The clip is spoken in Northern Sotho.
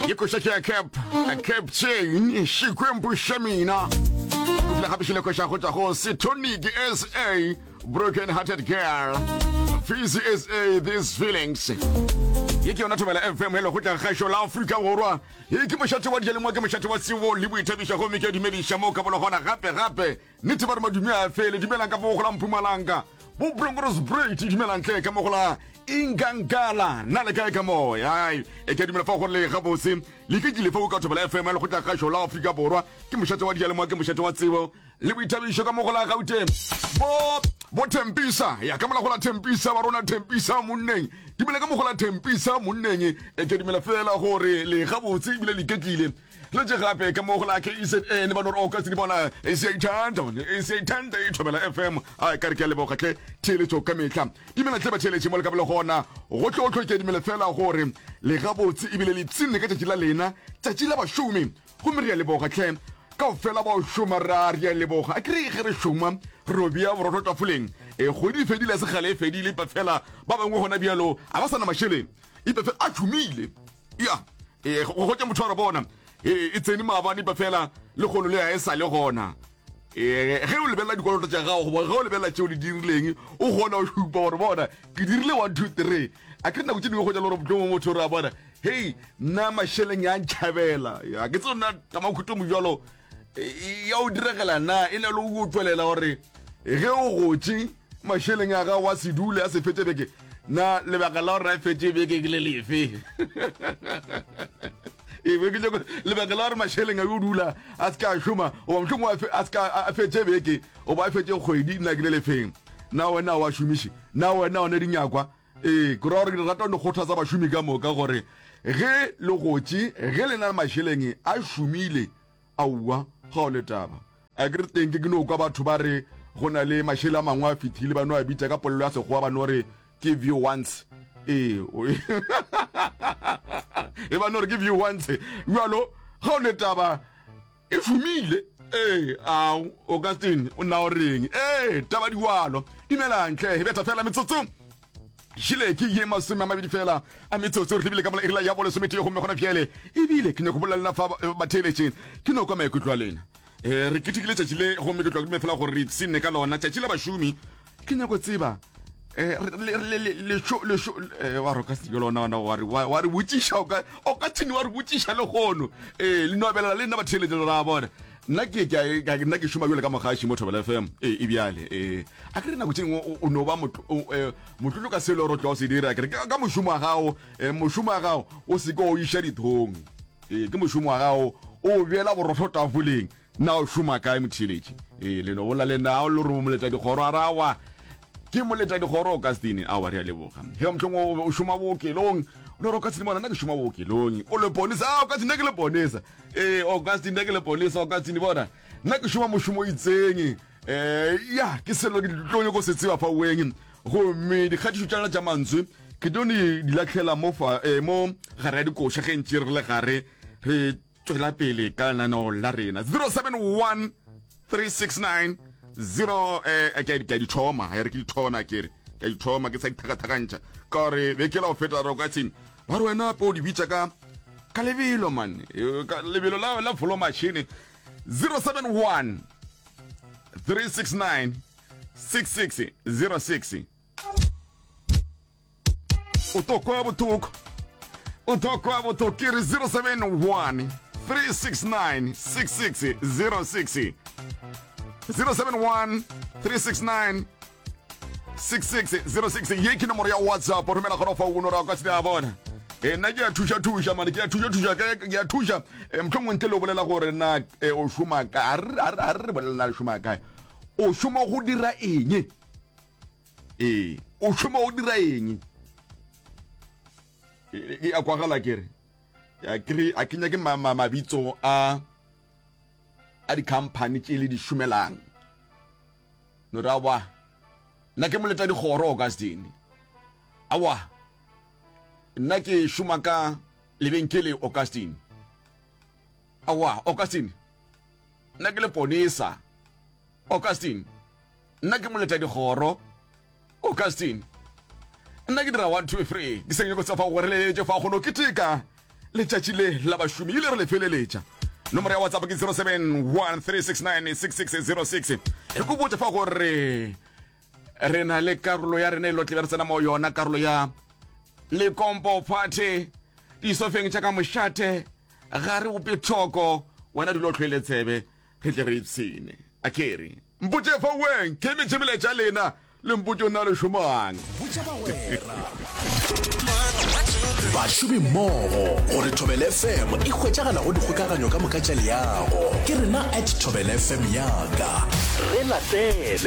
ye koša ke ya cap cap chain šikwempo xa mina o file gape šile koša go tšwa go setonic sa broken hearted girl fisi sa these feelings ye ke yona thobela fm e lego tla gašo la aforika borwa ye ke mošate wa dijalengwa ke mošate wa sebo le boithabišo gomme ke dumediša mo ka bologona gape gape Nete ba re madumi a fele, dumelang ka mo go la Mpumalanga, bo Blongoros Brate, dumelang tle ka mo go la Ingankala, na le kae ka moya? Ai, e ke dumela fa go le ga bose, le ke kile fa o ka thobela FM le go tla gašo la Afrika Borwa, ke mošate wa dialemoa, ke mošate wa tsebo le boithabišo ka mo go la Gauteng. Bo bo Tempisa, ya ka mola go la Tempisa wa rona Tempisa monneng. Dumela ka mo go la Tempisa monneng, e ke dumela fela gore le ga botse ebile le ketlile. Letše gape ka mo go la KZN ba no re oka tsedi bona e se ithanda one e se ithanda e thobela FM a e ka re ke a leboga tle theeletso ka mehla dimela tle ba theeletše mo le ka bele gona go tlo tlo ke dimele fela gore le ga botse ebile le tsinne ka tšatši la lena tšatši la bašomi gomme re a leboga tle kao fela ba o šoma ra re a leboga a kere ge re šoma robia borotho tafoleng e kgodi e fedile se gale e fedile ipa fela ba bangwe gona bjalo ga ba sa na mašeleng ipa fela a tšhomile ya e go gotša motho gore bona e tsene maabane ba fela le kgono le ya e sa le gona ee ge o lebelela dikoloto tša gago goba ge o lebelela tšeo di dirileng o kgona go šupa gore bona ke dirile one two three a ke nako tse dingwe go ja le gore motlho mo motho re a bona hei nna mašeleng ya ntšhabela a ke tseo nna tamakhuto mojalo e, ya o diregela na e le o tšwelela gore ge o gotše mašeleng a gago a se dule a se fetse beke na lebaka la gore a fetse beke ke le lefe e be ke nyako lebaka la gore mašeleng a yo dula a se ka a šoma goba mohlong a se ka a fetse beke goba a fetse kgwedi nna ke le lefeng na wena wa šomiše na wena one dinyakwa Ee, ke ra gore ke rata go kgothatsa bašomi ka moka gore ge le gotše, ge le na le mašeleng a šomile, aowa, ga go le taba. A ke re teng ke ke no kwa batho ba re go na le mašele a mangwe a fethile ba no a bitša ka polelo ya Sekgowa ba no re ke view once. Ee, e ba no re ke view once. Bjalo, ga go le taba. E fumile, ee, a o ka teng, o nna o reng, ee, taba diwalo, dumelang tle, e betha fela metsotso šile ke ye masome a mabedi fela a metsotso re lebile ka mola irila ya bo lesometee gomme gona bjale ebile ke nyako bolela lena fa eh, batheeletše ke no kwa maikutlo a lena um re ketekile tšatši le gomme ke tlwa ke dume fela gore re ipsenne ka lona tšatši la bašomi ke nyako tseba eh, eh, wa roka seke lona ona wa re botšiša o ka thini wa re botšiša le gono ee eh, le nobelela le nna batheletše le ra bona nna ke nna ke šoma jole ka mogaši mo thobela fm ee e bjale ee a ke re nako tšengwe o no ba e, motlotlo ka selo ro tlo se dira kere ka mošomo wa gago e, mošomo wa gago o seke o iša dithong ee ke mošomo wa gago o beela borotho tafoleng Na o šoma kae, motheeletši? Ee, le no bolla le nna. A o lo re o moletadikgoro? A re, Aowa, ke moletadikgoro, Augustine. Aowa, re a leboga. Ge mohlomongwe o be o šoma bookelong. O no re, Augustine, bona, nna ke šoma bookelong. O leponisa? A, Augustine, nna ke leponisa. Ee, Augustine, nna ke leponisa. Augustine, bona, nna ke šoma mošomo o itseng. Ee, ya, ke selo ke tlo nyoko se tseba fa weng. Gomme dikgatišo tša lena tša mantswe ke tlo di lahlela mo, fa, ee, mo gare ya dikoša ge ntše re le gare re Tšwela pele ka lenaneo la rena 071 369 0 eh ke ke di thoma ha re ke di thona ke re ke di thoma ke sa di thaka thakantša ka re be ke la o feta ro ka tsini ba re wena po di bitsa ka ka lebelo man eh, ka lebelo la la volo machine 071 369 6606 o tlo kwa bothoko o tlo kwa bothoko ke re 071 369 6606 071 369 6606 ye ke nomoro ya whatsapp romela gona fa uno ra kwa se a bona e nna ke ya thuša thuša mane ke ya thuša thuša ke ya thuša e motlhongwe ntle le o bolela gore na e, o šoma kae a re re bolelela le šoma kae o šoma go dira eng ee o šoma o dira eng e a kwagala kere ya kry a kenya ke mabitso a a di-company tše le di šomelang no ra wa nna ke moleta dikgoro augustin awa nna ke šoma ka lebenkele augustin awa augustin nna ke le ponesa augustin nna ke moleta dikgoro augustine nna ke dira one two three ke seng nyako tsa fa go re leletše fa kgono ke teka letšatši le la bašomi ile re le feleletša nomoro ya whatsapp ke 0713696606 e ko botse fa gore re na le karolo ya rena e lotle be re tsena mo yona karolo ya lekompo party disofeng tša ka mošate ga re bope thoko wena dilo tlhoele tsebe Re tle re ipshine. A ke re, Mpotše fa weng, ke emetše melaetša lena, le mpotše o nna le šomoang. Botša bagwera. Bašomi mmogo gore Thobel FM e hwetšagala go dikgokaganyo ka moka tša leago. Ke rena at Thobel FM yaka. Re latele.